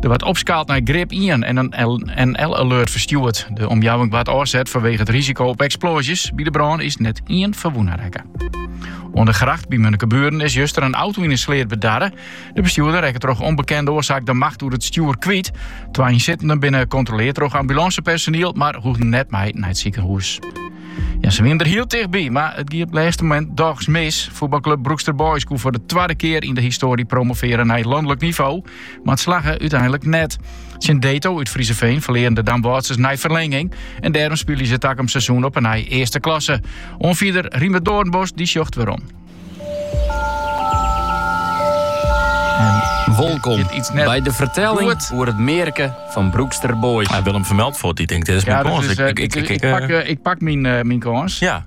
Der waard opskaald nei grip ien en in NL-alert ferstjoerd. De omjouwing waard ôfset fanwege it risiko op eksploazjes. By de brân is net ien ferwûne rekke. Oan de Grêft by Munnekeburen is juster in auto yn in sleat bedarre. De bestjoerder rekke troch ûnbekende oarsaak de macht oer it stjoer kwyt. Twa ynsittenden binne kontroleard troch ambulânsepersoniel, mar hoegden net mei nei it sikehûs. Ja, se wienen der hiel tichtby, mar it gie op it lêste momint dochs mis. Fuotbalklup Broekster Boys koe foar de twadde kear yn de histoarje promovearje nei it lanlik nivo. Mar it slagge úteinlik net. Tsjin DETO út Vriezenveen ferlearen de Damwâldsers nei ferlinging en dêrom spylje se takom seizoen op 'e nij Earste Klasse. Oanfierder Riemer Doornbos dy sjocht werom. Wolkom by de fertelling oer it mearke fan Broekster Boys. Willem vermeld voor die denkt, dit is mijn kans. Ik, ik, ik, ik, pak, uh, ik pak mijn, uh, mijn kans. Ja.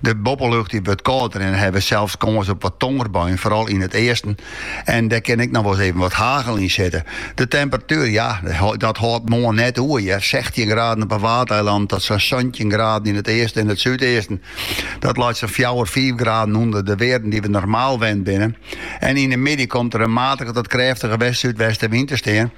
De boppelucht dy wurdt kâlder en hawwe we sels kâns op wat tongerbuien, foaral yn it easten. En dêr kin ek noch wol ris even wat hagel yn sitte. De temperatuer, ja, dat hâldt moarn net oer hear. Sechstjin graden op 'e Waadeilannen tot sa'n santjin graden yn it easten en it súdeasten. Dat leit sa'n fjouwer, fiif graden ûnder de wearden dy't we normaal wend binne. En yn 'e middei komt der in matige tot krêftige west-súdwestewyn te stean.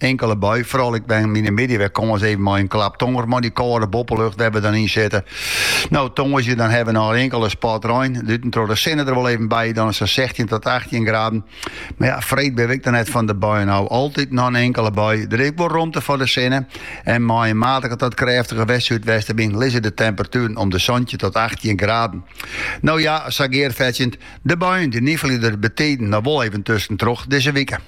Inkele bui, foaral ek wol yn 'e middei wer kâns even mei in klap tonger mei dy kâlde boppelucht wêr't we dan yn sitte. No tongersdei dan hawwe we noch in inkele spat rein, tuskentroch de sinne der wol even by, dan is sa'n sechstjin tot achttjin graden. Mar ja, freed binne we ek noch net fan de buien ôf. Altyd noch in inkele bui, der is ek wol romte foar de sinne en mei in matige tot krêftige west-súdwestewyn lizze de temperatueren om de santjin tot achttjin graden. No ja, sa gearfetsjend, de buien dy nifelje der betiden noch wol even tuskentroch dizze wike.